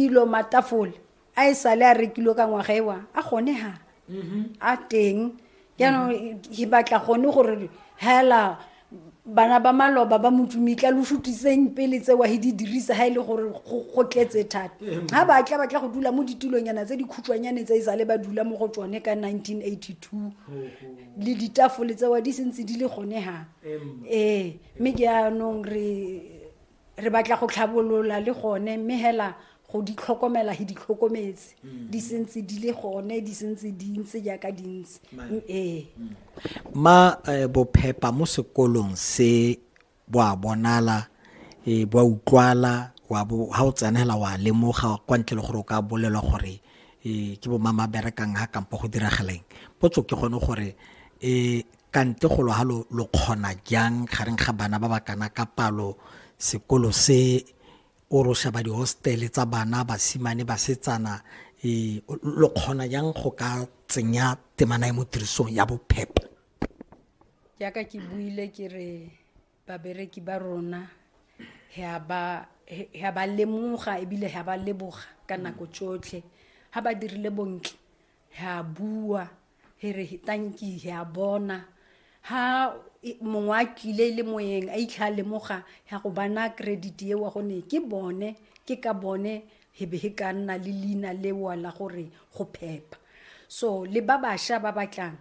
dilo matafole a e sale a rekilwe ka ngwaga ewa a gone ha mm-hmm. a teng jaanong e batla gone gore hela bana ba maloba ba motsumitla lo shutiseng pele tsewa he di dirisa ha e le gore go tletse thata ga ba tla batla go dula mo ditulonyana tse dikhutshwanyane tse e sale ba dula mo go tsone ka 1982 le ditafole tsewa di sentse di le gone ha ee mme ke anong re re batla go tlhabolola le gone mme hela go di tlhokomela he di tlhokometse mm. di sentse di le gone di sentse di ntse jaaka di ntse mm, ee mm. ma eh, bophepa mo sekolong se bo a bonala e bo utlwala wa bo ha o tsenela wa lemoga kwa ntle le gore o ka bolelwa gore e ke bo mama berekang ha kampo go diragaleng potso ke gone gore e Kante go lo halo lo kgona jang gareng ga bana ba ba kana ka palo sekolo se o ro shaba dihostele tsa bana basimane basetsana e, lo kgona jang go ka tsenya temana e mo tirisong ya bophepho jaaka ke buile ke re babereki ba rona ga ba lemoga ebile ga ba leboga ka nako tsotlhe ga ba dirile bontle he a bua he re tanki he a bona ha mongwe a tlile e le moyeng a itlha a lemoga ya go bana credit eo wa gone ke bone ke ka bone he be he ka nna le leina lewa la gore go phepa so le ba bašwa ba batlang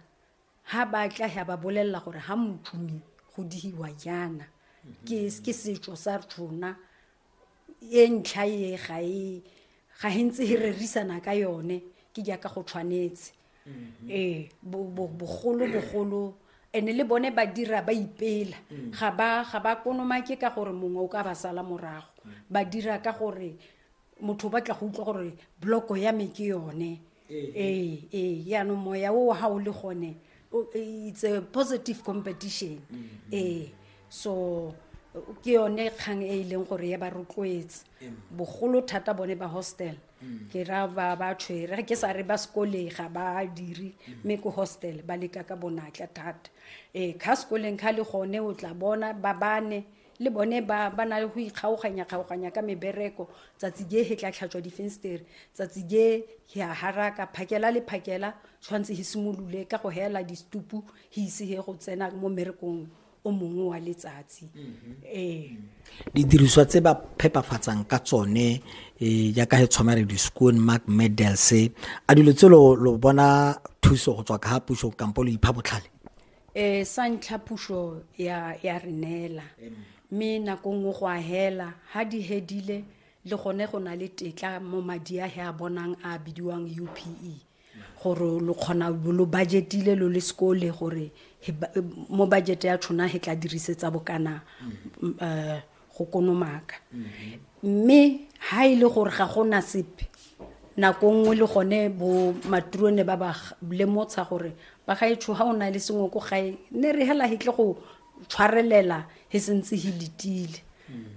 ha ba tla ya ba bolelela gore ha mothume go dihiwa jaana ke setso sa rona e ntlha e ga e ga e ntse e rerisana ka yone ke jaaka go tshwanetse mm-hmm. ee bogolo bogolo ene le bone ba dira ba ipela mm. ga ba ga ba konomake ka gore mongwe o ka ba sala morago mm. ba dira ka gore motho o batla go utlwa gore bloko ya me ke yone ee ee yaanong moya o ga o le gone o- it's a positive competition ee so ke yone kgang e e leng gore ya ba rotloetse bogolo thata bone ba hostel ke ra ba ba tshwere ga ke sa re ba sekoleng ga ba dire mme ko hostel ba leka ka bonatla thata ee kha sekoleng kha le gone o tla bona ba bane Le bone ba ba na le go ikgaoganyakgaoganya ka mebereko, tsatsi je he tla tlhatswa difenstere, tsatsi je he a haraka, phakela le phakela tshwanetse he simolole ka go heela distupu he ise he go tsena mo mmerekong o mongwe wa letsatsi. Ee. Didiriswa tse ba phepafatsang ka tsone eh, jaaka he tshwana re di-scoon mark medals a dilo tse lo lo bona thuso go tswa ka ga puso kampo lo ipha botlhale um sa ntlha puso ya re neela mme nako nngwe go a hela ga di hedile le gone go na le tetla mo madi a he a bonang a bidiwang u p e gore lo kgona lo budgetile lo le sekole gore mo budget ya tshona he tla dirisetsa bokana um go konomaka mme ha e le gore ga go na sepe nako nngwe le gone bo maturone ba ba lemotsha gore ba ga etsho ha o na le sengwe ko gae ne re hela hitle go tshwarelela he sentse he letile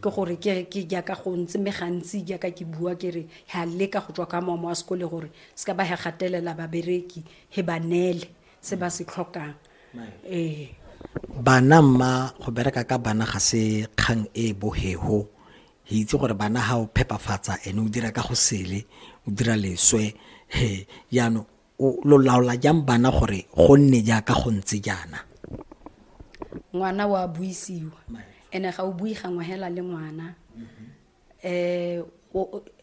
ke gore ke ke jaaka go ntse me gantsi jaaka ke bua ke re ha leka go tswa ka mamo a sekole gore se ka ba he gatelela babereki he ba nele se ba se tlhokang ee bana mma go bereka ka bana ga se kgang e e bohego re itse gore bana ga o phepafatsa ene o dira ka go sele o dira leswe he jaanong lo laola jang bana gore go nne jaaka go ntse jaana ngwana wa buisiwa ene ga o bui gangwe hela le ngwana mm-hmm. um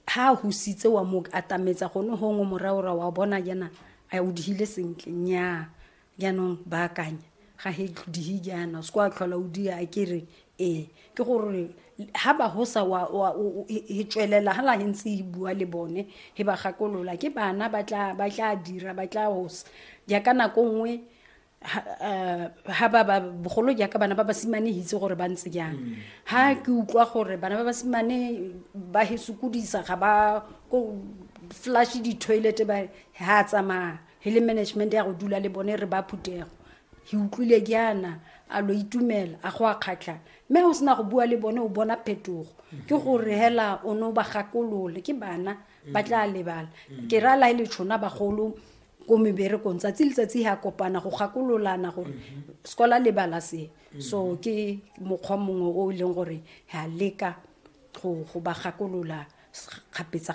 ha a husitse wa mo atametsa gone gongwe moraora wa bona jaana a o digile sentle nyaa jaanong baakanya ga he dihi jaana se kwa tlhola o di a kere ee ke gore ha ba hosa wa wa e tswelela ha la he ntse e bua le bone he ba gakolola ke bana ba tla ba tla dira ba tla hosa jaaka nako nngwe ha ba ba bogolo jaaka bana ba basimane itse gore ba ntse jang ha ke utlwa gore bana ba basimane ba he sokodisa ga ba ko flash di-toilet ba ha tsamaya he le management ya go dula le bone re ba phutego ke utlwile jaana a lo itumela a go a kgatlha mme o sena go bua le bone o bona phetogo ke gore hela o ne o ba gakolole ke bana ba tla lebala ke ra lae le tshona bagolo ko meberekong tsatsi letsatsi ha kopana go gakololana gore sekola le bala se so ke mokgwa mongwe o e leng gore ha leka go ba gakolola kgapetsa-kgapetsa